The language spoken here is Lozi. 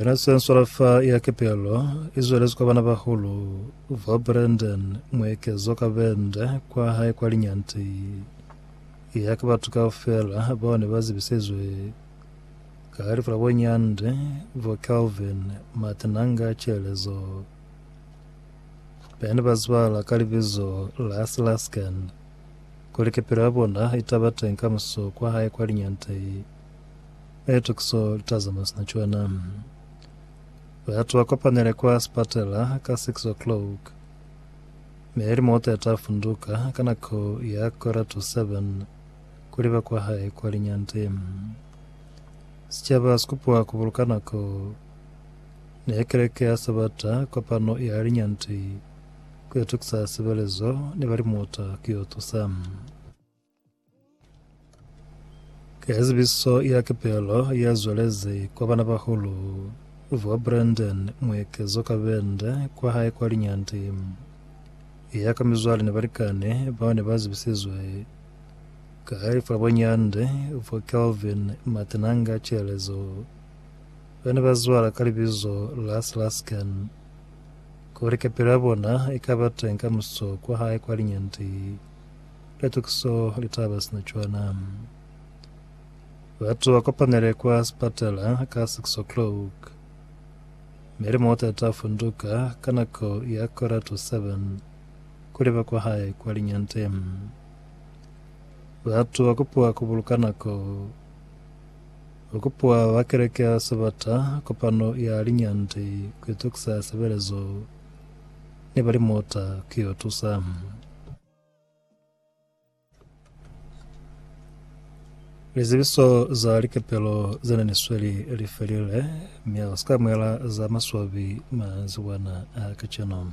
Mina Sensola fa ya kepelo i zwelezi kwa bana bahulu ba Brendon muekezo ka bende kwa hae kwa linyanti ya ka batu kaufela bao ne ba zibisizwe ka lifu la bo Nyandi bo Kelvin Matinanga Chelezo bene ba zibala ka libizo la Slasken kuli kepelo ya bona i taba teng kamuso kwa hae kwa linyanti Eto ki so litazama sina cwana. Batu ba kopanile kwa sipatela ka 6:00, mi ili mota ya ta funduka ka nako ya kora to 7 ku liba kwa hae kwa linyante. Sicaba si kupiwa ku buluka nako. Ne keleke ya Sabata kopano ya linyante ku yo tukisa sibelezo ni ba limota ku yo tusa. Ka zibiso ya kepelo ya zwelezi kwa bana bahulu vwa Brandon muekezo ka bende kwa hae kwa linyandi ya ka mizwale ni balikani bao ne ba zibisizwe ka fa bonyandi vwa Kelvin Matenanga Chelezo ba ne ba zwala ka libizo la Slasken kuli kepelo ya bona i ka ba teng ka muso kwa hae kwa linyandi Litukiso litaba sina cwana. Batu ba kopanele kwa sipatala ka 6 o'clock. Mi limota ta funduka ka nako ya kora to 7 kuli ba kwa hae kwa linyante. Batu ba kupuwa ku buluka nako. Ho kupuwa ba keleke ya Sabata kopano ya linyante ku itukisa sebelezo ni ba limota ku yo tusa. Lizibiso za likepelo ze ne ni sweli li felile, mi a si ka amuhela za maswabi manzibwana a kacenu.